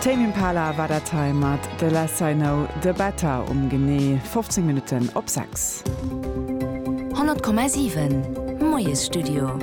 Tame Impala war dat hei mat The Less I Know The Better um genee 15 Minutten op 6. 100,7 Moiesstudio.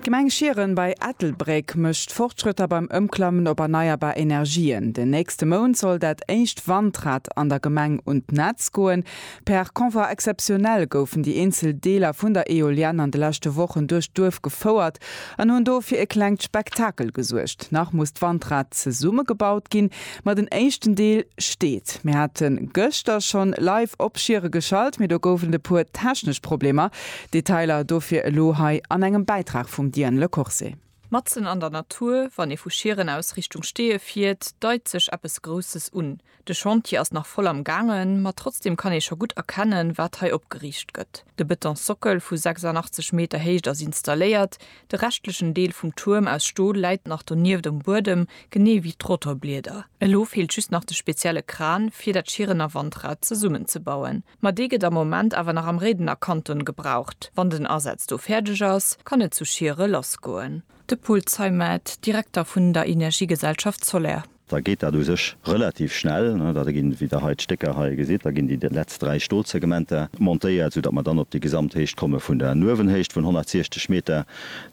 D'Gemeng Schieren bei Ettelbréck mécht Fortschrëtter beim Ëmklammen op erneierbar Energien. Den nächste Mount soll dat éischt Wandrad an der Gemeng un d'Netz goen. Per Convoi exceptionnel goufen déi eenzel Deeler vun der Eolienne an de leschte Wochen duerch d'Duerf gefouert an hunn do fir e klengt Spektakel gesuergt. Nach muss d'Wandrad zesummegebaut ginn, ma den éischten Deel steet. Mir hate gëschter schonn live op Schiere geschalt, mee do gouf et e puer technesch Problemer. Detailer dofir elo hei an engem Bäitrag vum Diane Le Corse. Matzen an der Natur, wann ee vu Schieren aus Richtung Steeë fiert, deit sech eppes Grousses un. De Chantier ass nach voll am gaangen, ma trotzdem kann ee scho gutt erkennen, wat hei opgeriicht gëtt. De Betonsockel vu 86 Meter Héicht ass installéiert, de reschtlechen Deel vum Tuerm aus Stol läit nach donieft um Buedem, genee wéi d'Rotorblieder. Elo feelt just nach de spezielle Kran, fir dat Schierener Wandrad zesummenzebauen. Ma dee gëtt am Moment awer nach am Réidener Kanton gebraucht. Wann den Asaz do fäerdeg ass, kann et zu Schiere lassgoen. De Paul Zeimet, Direkter vun der Energiegesellschaft Soler. da geet dat u sech relativ schnell, da ginn, wéi Der hei d'Stécker hei gesitt, da ginn déi letzt dräi Stolsegmenter montéiert, soudatt mer dann op déi Gesamthéicht komme vun der Nuewenhéicht vun 160 Meter,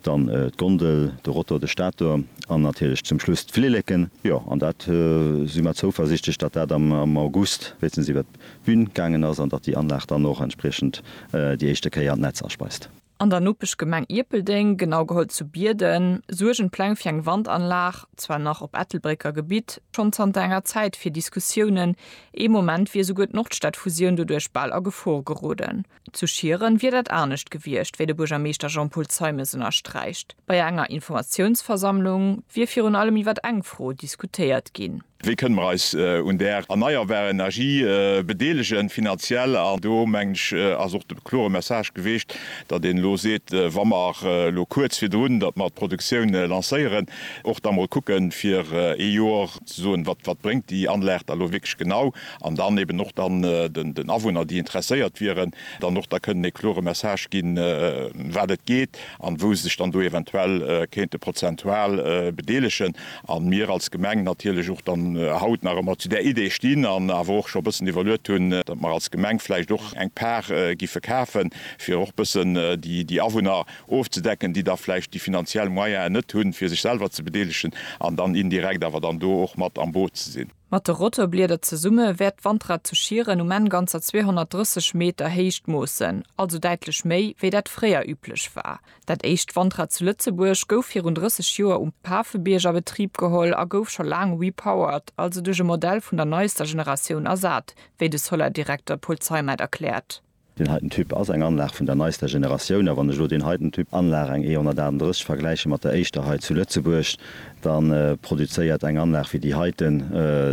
dann d'Gondel, de Rotor, de Stator an natierlech zum Schluss d'Flilleken. Jo, an dat si mer zouversiichtlech, datt dat am August wéinstens iwwert d'Bün gaangen ass an datt déi Anlag dann och entspriechend déi éischte Kéier d'Netz aspeist. An der Nopeschgemeng Ierpeldeng, genau geholl zu Bierden, suergen d'Pläng fir eng Wandanlag, zwar nach op Ettelbrécker Gebitt, schonn zanter enger Zäit fir Diskussiounen. Ee Moment wier esouguer d'Nordstadfusioun doduerch bal a Gefor geroden. Zu Schieren wier dat anescht gewiescht, wéi de Buergermeeschter Jean-Paul Zeimes ënnersträicht. Bei enger Informatiounsversammlung wier virun allem iwwer eng Fro diskutéiert ginn. Wéi kënne mer eis un där erneierbar Energie bedeelegen, finanziell? An do, mengen ech, ass och de klore Message geweecht, datt een elo seet, wa mer elo kuerz virdrun, datt mer d'Produktioun lancéieren, och da mol kucken, fir ee Joer ze soen, Wat, wat bréngt déi Anlag da elo wierklech genau? An dann eben och dann den Awunner, déi interesséiert wieren, dann och da kënnen ee klore Message ginn, ëm wat et geet an wou se sech dann do eventuell kéinte prozentual bedeelegen. A mir als Gemeng natierlech och dann haut nach ëmmer zu där Idee stinn an awer och scho bëssen iwwerluet hunn, datt mer als Gemeng vläicht och eng Par giffe kafen, fir och bëssen déi Awunner ofzedecken, déi da vläicht déi finanziell Moyene net hunn, fir sech selwer ze bedeelegen an dann indirekt awer dann do och mat am Boot ze sinn. Mat de Rotorblieder zesumme wäert d'Wandrad zu Schieren um Enn ganzer 230 Meter Héicht moossen, also däitlech méi, wéi dat fréier üblech war. Dat éischt Wandrad zu Lëtzebuerg gouf virun 30 Joer um Pafebiërg a Betrib geholl a gouf scho laang repowered, also duerch e Modell vun der neister Generatioun ersat, wéi de Solar-Direkter Paul Zeimet erkläert. Deen heiten Typ ass eng Anlag vun der neister Generatioun, a wann ech elo deen heiten Typ Anlag, eng E138, vergläiche mat der éischter hei zu Lëtzebuerg, da produzéiert eng Anlag wéi déi heiten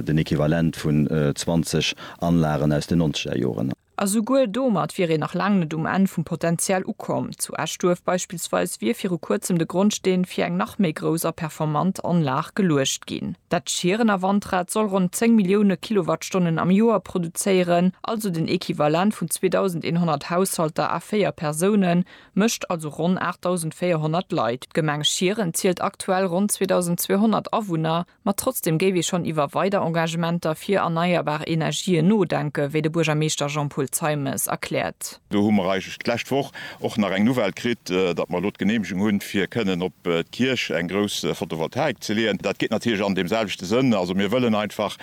den Equivalent vun 20 Anlagen aus den nonzeger Joren. A souguer domat wier een nach laang net um Enn vum Potenzial ukomm. Zu Eschduerf beispillsweis wier viru kuerzem de Grondsteen fir eng nach méi grouss a performant Anlag geluecht ginn. Dat Schierener Wandrad soll ronn 10 Millioune Kilowattstonnen am Joer produzéieren, also den Equivalent vun 2.100 Haushalter a véier Persounen, mécht also ronn 8.400 Leit. D'Gemeng Schieren zielt aktuell ronn 2.200 Awunner. Ma trotzdem géif ee schonn iwwer weider Engagementer fir erneierbar Energien nodenken, wéi de Buergermeeschter Jean-Paul Zeimes erkläert. Do hu mer eigentlech d'lescht Woch och nach eng Nouvelle kritt, datt mer elo d'Geneemegung hunn, fir kënnen op d'Kierch eng grouss Photovoltaik ze leeën. Dat geet natierlech an deem selwechte Sënn. Also mir wëllen einfach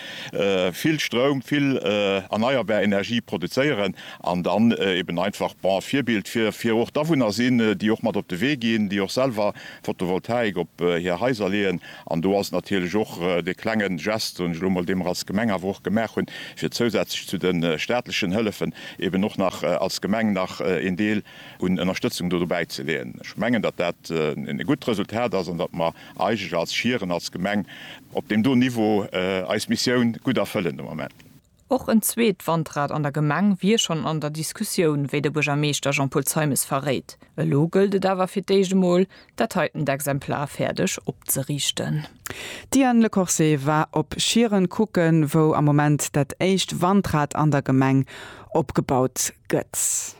vill Stroum, vill erneierbar Energie produzéieren an dann eben einfach, bon, e Virbild fir och d'Awunner sinn, déi och mat op de Wee ginn, déi och selwer Photovoltaik op hir Haiser leeën. An do ass natierlech och dee klenge Gest, soen ech elo mol, dee mer als Gemeng awer och gemaach hunn, fir zousätzlech zu de staatlechen Hëllefen eben och nach als Gemeng nach een Deel un Ënnerstëtzung do dobäi ze leeën. Ech mengen, datt dat e gutt Resultat ass an datt mer eigentlech als Schieren, als Gemeng op deem do Niveau eis Missioun gutt erfëllen de Moment. Och en zweet Wandrad an der Gemeng wier schonn an der Diskussioun, wéi de Buergermeeschter Jean-Paul Zeimes verréit. Elo gëllt et awer fir d'éischt emol, dat heitent Exemplar fäerdeg opzeriichten. D'Diane Lecorse war op Schieren kucken, wou am Moment dat éischt Wandrad an der Gemeng opgebaut gëtt.